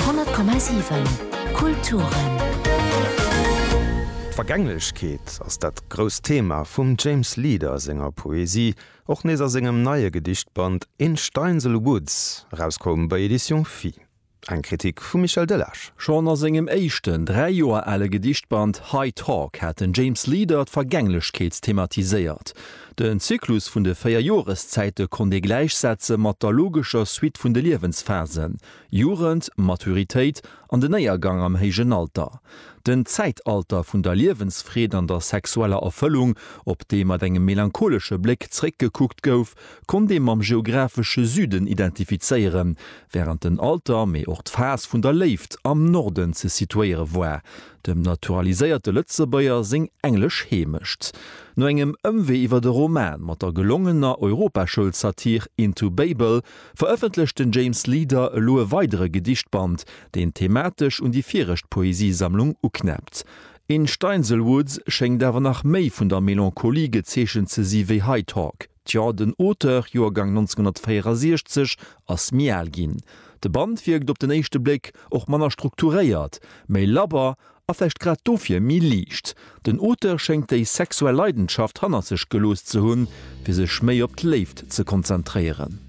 100,7 Kulturen. D'Vergänglechkeet ass dat grousst Thema vum James Leader senger Poesie, och nees a sengem neie Gedichtband In Steinsel Woods, erauskoum bei Editions Phi. Eng Kritik vum Michel Delage. Schonn a sengem éischten, dräi Joer ale Gedichtband High Talk hat den James Leader d'Vergänglechkeet thematiséiert. Den Zyklus vun de véier Joreszäite konnt ee gläichsetze mat der logescher Suite vun de Liewensphasen, Jugend, Maturitéit an den Éiergang am héijen Alter. Den Zäitalter vun der Liewensfreed an der sexueller Erfëllung, op dee mat engem melancholesche Bléck zeréckgekuckt gouf, konnt ee mam geographesche Süden identifizéieren, wärend den Alter, mee och d'Phas vun der Léift am Norden ze situéiere war, dem naturaliséierte Lëtzebuerger seng englesch Heemecht. No engem Ëmwee iwwer de Roman mat der gelongener Europaschoulsatir Into Babel verëffentlecht den James Leader elo e weidere Gedichtband, deen thematesch un déi viregt Poesiesammlung uknäppt. In Steinsel Woods schéngt awer nach méi vun der Melancholie gezeechent ze si wéi High Talk. Tjo, den Auteur, Joergang 1964, ass méi al ginn. De Band wierkt op den éischte Bléck och manner strukturéiert, méi labber a vläicht grad dofir méi liicht. Den Auteur schéngt déi sexuell Leidenschaft hannert sech gelooss ze hunn, fir sech méi op d'Léift ze konzentréieren.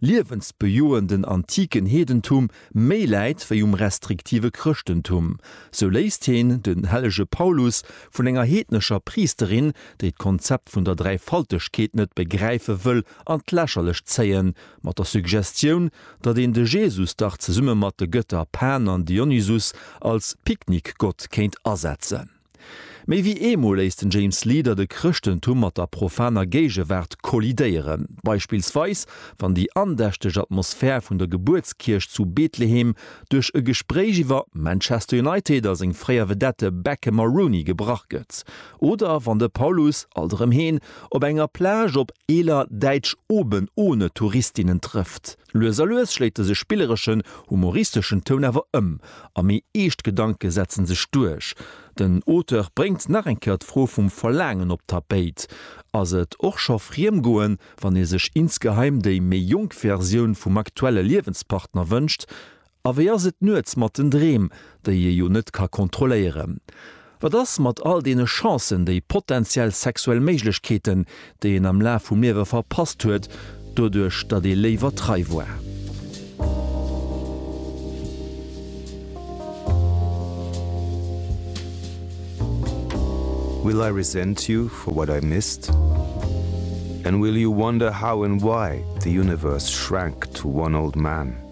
liewensbejoenden antiken Heedentum méi läit wéi um restriktive Chrëschtentum, sou léisst heen den hellege Paulus vun enger heednescher Priisterin, déi d'Konzept vun der Dräifaltegkeet net begräife wëll, an d'Lächerlecht zéien, mat der Suggestioun, datt een de Jesus dach zesumme mat de Gëtter Pan an Dionysus als Picknickgott kéint asetzen. Méi wéi eemol léisst den James Leader de Chrëschtentum mat der profaner Géigewaart kollidéieren. Beispillsweis wann déi andächteg Atmosphär vun der Gebuertskierch zu Betlehem duerch e Gespréich iwwer Manchester United a seng fréier Vedette Beckham a Rooney gebrach gëtt oder wann de Paulus, alt erëm heen, op enger Plage op eeler däitsch Oben-Ohne-Touristinnen trëfft. Lues a lues schléit dëse spillereschen, humoristeschen Toun awer ëm a méi eescht Gedanke setzen sech duerch. Den Auteur bréngt nach eng Kéier d'Fro vum Verlaangen op d'Tapéit, Ass et och scho friem goen, wann ee sech insgeheim déi méi jonk Versioun vum aktuelle Liewenspartner wënscht? A wéi ass et nuets mat den Dreem, déi ee jo net ka kontrolléieren? Wat ass mat all deene Chancen, déi potentiell sexuell Méiglechkeeten, déi een am Laf vum Liewe verpasst huet, doduerch datt ee léiwer trei war? Will I resent you for what I missed? And will you wonder how and why the universe shrank to one old man?